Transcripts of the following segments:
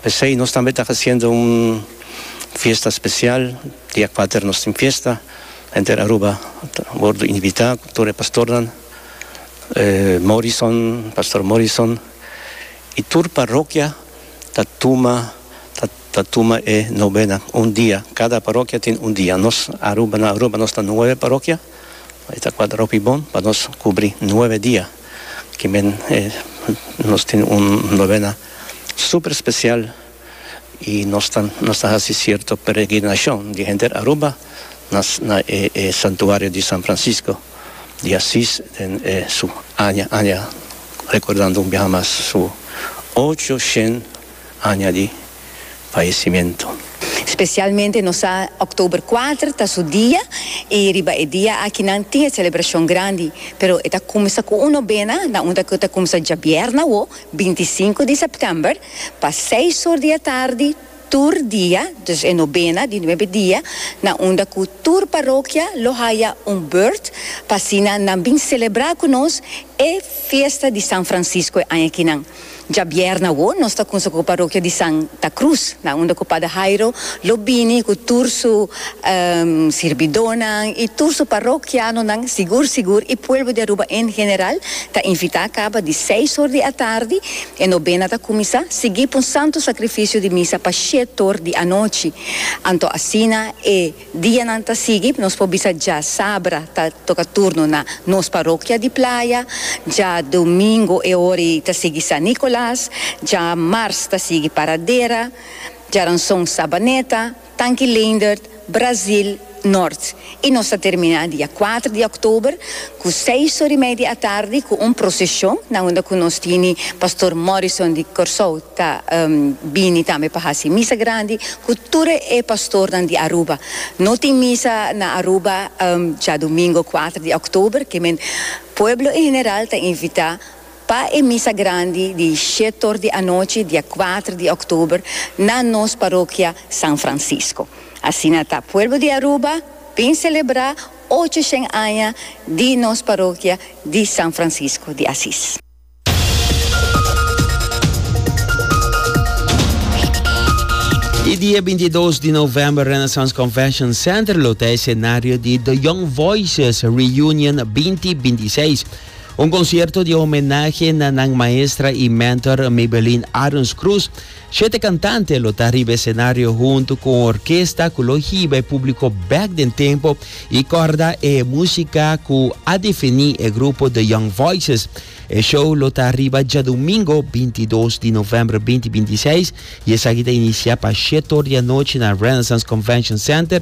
P'esei nos tambe ta haciendo un fiesta especial, dia kuater nos tin fiesta, henter Aruba ta wordo invita cu tur e pastornan, Morrison, Pastor Morrison, y tur parokia ta tuma ta ta tuma e novena un dia, cada parokia tin un dia, nos Aruba na Aruba nos ta nueve parokia, e ta kuater hopi bon pa nos cubri nueve dia. Kimen e nos tin un novena super special y nos ta nos ta haci cierto peregrinacion di henter Aruba na na e e santuario di San Francisco di Asis den e su aña aña recordando un biaha mas su ocho shen aña di fayecimento. Specialmente nos sa october cuater ta su dia y riba e dia aki nan tin e celebracion grandi pero e ta cumsa cu un nobena na un ta cu ta cumsa djabierna awo binti y sinku di september pa seis or di e tardi tur dia dus e nobena di nuebe dia na unda cu tur parokia lo haya un beurt pa asina nan bin celebra cu nos e fiesta di San Francisco e aña kinan. Djabièrnè awo nos ta kunsa ku parokia di San ta Krus nan unda ku Pader Hairo lo bini ku tur su sirbidónan i tur su parokianonan sigur sigur i pueblo di Aruba en general ta invitá kaba di seis or di atardi e nobena ta kuminsá sigui pa un santu sakrifisio di misa pa shét or di anochi anto asina e Dianan ta sigui, nos por bisa dja sabra ta toca turno na nos parokia di Playa, dja domingo e ora ei ta sigui San Nicolas, dja mars ta sigui Paradera, djaranson Sabaneta, Tanki Leendert, Brazil, Noord. I nos ta termina dia kuater di oktober Ku seis or i media atardi ku un proseshon na unda ku nos tini Pastor Morrison di Kòrsou ta bini tambe pa hasi misa grandi ku tur e pastornan di Aruba. No tin misa na Aruba djadumingo kuater di òktober, ke men pueblo en general ta invitá pa e misa grandi di shet or di anochi dia kuater di òktober na nos parokia San Francisco. Asina ta pueblo di Aruba bin selebrá. Ocho shen aña di nos parokia di San Francisco di Asis. E dia binti i dos di november Renaissance Convention Center lo ta esenario di The Young Voices Reunion binti binti i seis, un concierto di homenahe na nan maestra i mentor Maybelline Arons Cruz, Shete kantante lo ta riba esenario huntu ku un orkesta ku lo hiba e públiko bèk den tempu i kòrda e músika ku a definí e grupo The Young Voices. E show lo ta riba djadumingo binti dos di novèmber binti binti seis i esaki ta inisiá pa shet or di anochi na Renaissance Convention Center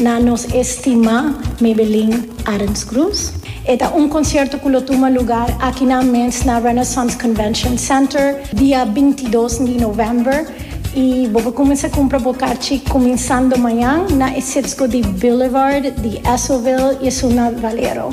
Na nos estimá Mebelin Arensgroes. E ta un konsierto ku lo tuma lugar akinan mes na Renaissance Convention Center dia binti dos di novèmber i bo por kuminsá kumpra bo karchi kuminsando mañan na e sipsgo di Boulevard di Esautville i esun na Valero.